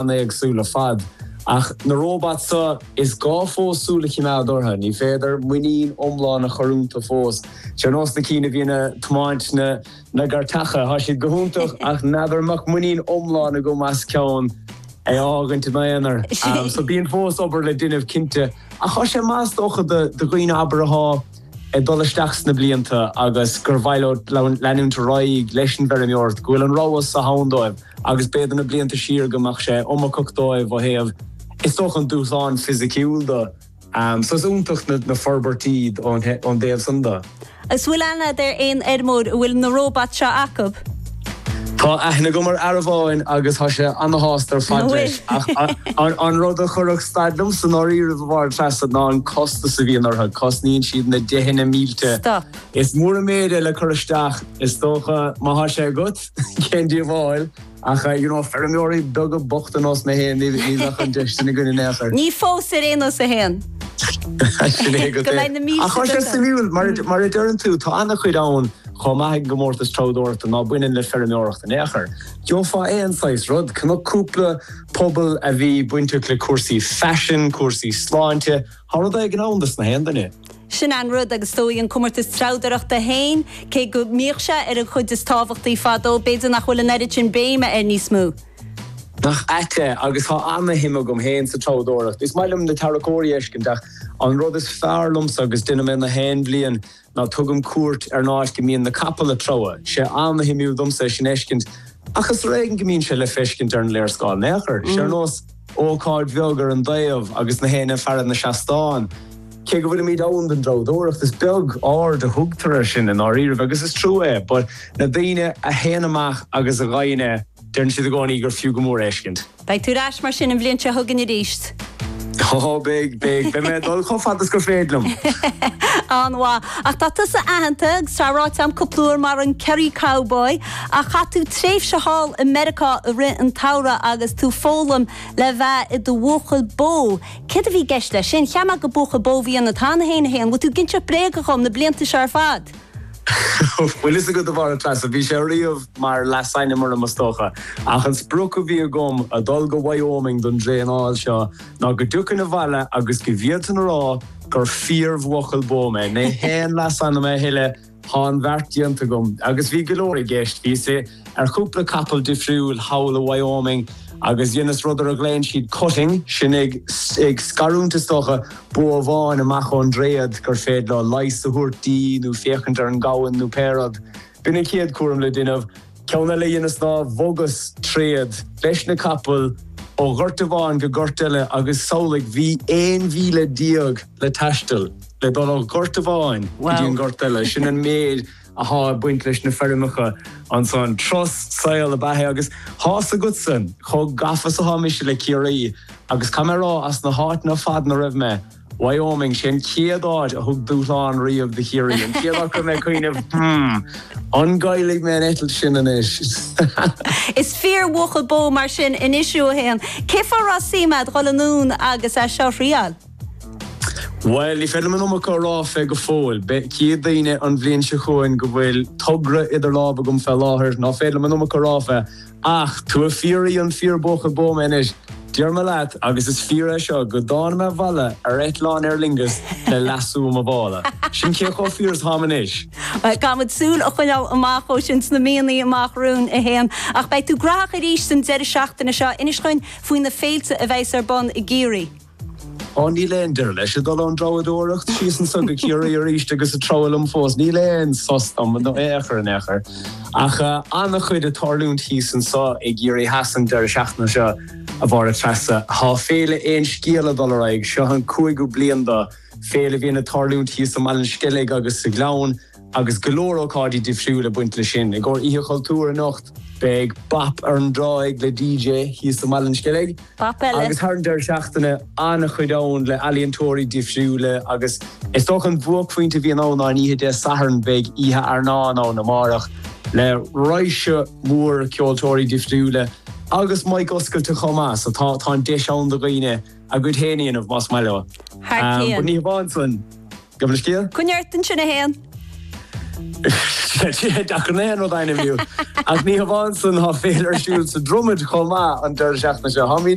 an-éagsúil ar fad. Ach na róbat seo, is gá fós súil a chimeád orthu. Ní féidir muinín iomlán a chur iontu fós. Is ar nós na cinn a bhíonn a tiomáint na na gcairteacha, tá siad go hiontach ach n'fheadar an mbeadh muinín iomlán agam as ceann a fhágaint i m'aonar. So bíonn fós obair le déanamh cinnte. Ach tá sé maith is dócha do dhaoine abair athá ag dul isteach sna blianta agus gur mhaith leo leanúint ar aghaidh leis an bhfeirmeoireacht, go bhfuil an rogha so ann dóibh. agus b'fhéidir na blianta siar go mbeadh sé iomarcach dóibh ó thaobh, is dócha, an dúshlán fisiciúil de. So is iontach na forbairtí ón dtaobh san de. An bhfuil aithne a'd ar aon fheirmeoir a bhfuil na róbat seo acu? Tá aithne agam ar fhear amháin agus tá sé ana-shásta ar fad leis. Ach an rud a chuirfeadh stad liomsa i ndáiríribh a Mháire-Treasa ná an costas a bhíonn orthu, cosnaíonn siad na deicheanna mílte. Stop. Is mór an méid é le cur isteach, is dócha, má tá sé agat. Cén díobháil ach, you know, feirmeoirí beaga bochta nós mé féin, ní bheadh an deis sin againn in aon chor. Ní fós ar aon nós a Sheáin. Sin é agat é. Go mbeidh na mílte. Ach tá sé suimiúil, mar a deireann tú, tá ana-chuid ann chomh maith ag an gComórtas Treabhdóireachta ná baineann le feirmeoireacht in aon chor. Gheofá aon saghas rud, chonac cúpla puball a bhí bainteach le cúrsaí faisin, cúrsaí sláinte, Thá rud éigin ann dos nach aon duine. Sin an rud, agus dóigh an comórtas treabhdóireachta féin, cé go mbíodh sé ar an chuid is tábhachtaí fadó, b'fhéidir nach bhfuil an oiread sin béime air níos mó. Nach ait é, agus thá ana-shuim agam féin sa treabhdóireacht. Is maith liom na tarracóirí a fheiscint, ach an rud is fearr liomsa, agus déanann mé nach aon bhliain, Ná tugaim cuairt ar an áit go mbíonn na capaill a' treabhadh. Tá sé ana-shuimiúil domsa é sin fheiscint, ach is ar éigin go mbíonn sé le feiscint ar an léarscáil in aon chor. Tá sé ar nós ócáid bheag ar an dtaobh agus nach éinne ag faire ar na seastáin. Cé go bhfuilimid ann don dtreabhadóireacht, is beag aird a thugtar air sin i ndáiríribh, agus is trua é. But na daoine a théann amach agus a dheineann é, Deireann siad i gcónaí gur fiú go mór é a fheiscint. Beidh tú ar ais mar sin an bhliain seo chugainn arís? Ó, beidh, beidh. Beidh mé ag dul chomh fada is gur féidir liom. An-mhaith. Ach tá tusa aitheanta agus tá ráite agam cúpla uair mar an Kerry Cowboy, ach chaith tú tréimhse thall i Meiriceá i rith an tsamhraidh agus tú ag foghlaim le bheith i do bhuachaill bó. Céard a bhí i gceist leis sin? Cheap mé gur buachaill bó a bhí ionat cheana féin, a Sheáin. Bhfuil tú ag inseacht bréaga dhom na blianta seo ar fad? Bhfuil fhios agat, a Mháire-Treasa, bhí sé riamh mar leasainm orm, is dócha, ach an sprioc a bhí agam a dhul go Wyoming don dtraenáil seo ná go dtiocfainn abhaile agus go bhféadfainn a rá gur fíorbhuachaill bó mé. Ní haon leasainm é a thuilleadh, tá an beart déanta agam. Agus bhí go leor i gceist, bhí. ar chúpla capall difriúil thall i Wyoming agus dheineas rud ar a ghlaonn siad cutting, sin é ag scarúint is dócha, bó amháin amach ón dtréad gur féidir leo leigheas a thabhairt di nó féachaint ar an gamhain nó pé rud. B'in an chéad chúram le déanamh. Ceann eile a dheineas ná bhogas tréad leis na capaill ó ghort amháin go gort eile agus samhlaigh, bhí aon mhíle déag le taisteal le dul ó ghort amháin go dtí an gort eile, sin an méid. atá ag baint leis na feirmeacha ansan. Trus, saol na beatha. Agus thás a fhios agatsa chomh gafa is atá mise le Ciarraí. Agus caithfidh mé a rá, as na háiteanna ar fad ina raibh mé, Wyoming, sé an chéad áit a thug dúshlán riamh do Chiarraí. An chéad áit go raibh mé ag cuimhneamh, hmm, an gcaillfidh mé an eitilt sin anois? Is fíor bhuachaill bó mar sin anois thú a Shéain. Cén fáth a raibh suim a'd dhul anonn agus é seo a thriail? Bhuel, ní féidir liom an iomarca a rá fé go fóill. Chífidh daoine an bhliain seo chugainn go bhfuil togra idir lámh agam fé láthair ná féidir liom an iomarca a rá fé. Ach ó thaobh fiafraí an fíorbhuachaill bó mé anois. Déarfaidh mé leat, agus is fíor é seo, go dtáinig mé abhaile ar eitleán Aer Lingus le lasso i mo mhála. Sin cé chomh fíor is atáim anois. Caithfimid súil a choinneáil amach dó sin sna míonnaí amach romhainn, a Sheáin. Ach beidh tú graitheach arís an deireadh seachtaine seo. Inis dhúinn faoi na féilte a bheas ar bun i gCiarraí. Ó, níl aon deireadh leis, ag dul ón Treabhdóireacht síos anso go Ciarraí arís agus ag treabhadh liom fós. Níl aon sos dom, in aon chor in aon chor. Ach ana-chuid ag tarlúint thíos anso i gCiarraí Theas an deireadh seachtaine seo, a Mháire Treasa. Tá Féile Aon Scéal? ag dul ar aghaidh. Seo an cúigiú bliain dó. Féile a bhíonn ag tarlúint thíos i mBaile an Sceilg agus sa Ghleann. Agus go leor ócáidí difriúil ag baint leis sin, i gcomhair Oíche Chultúir anocht beidh bap ar an dtráigh le DJ thíos i mBaile an Sceilg. Bap eile! Agus thar an deireadh seachtaine, an-chuid ann le ealaíontóirí difriúla agus is dócha an buaicphointe a bhíonn ann ná an oíche Dé Sathairn, beidh Oíche Fhearnáin ann amárach le raidhse mór ceoltóirí difriúla agus mic oscailte chomh maith so tá an deis ann do dhaoine a gcuid féin a dhéanamh más maith leo. Ní hamháin san, Gabh mo leithscéal? Coinnigh ort ansin, a Shéain! Is deacair gach aon rud a ainmniú, ach ní hamháin san, tá féile ar siúl sa Dromad chomh maith an deireadh seachtaine seo. Táimid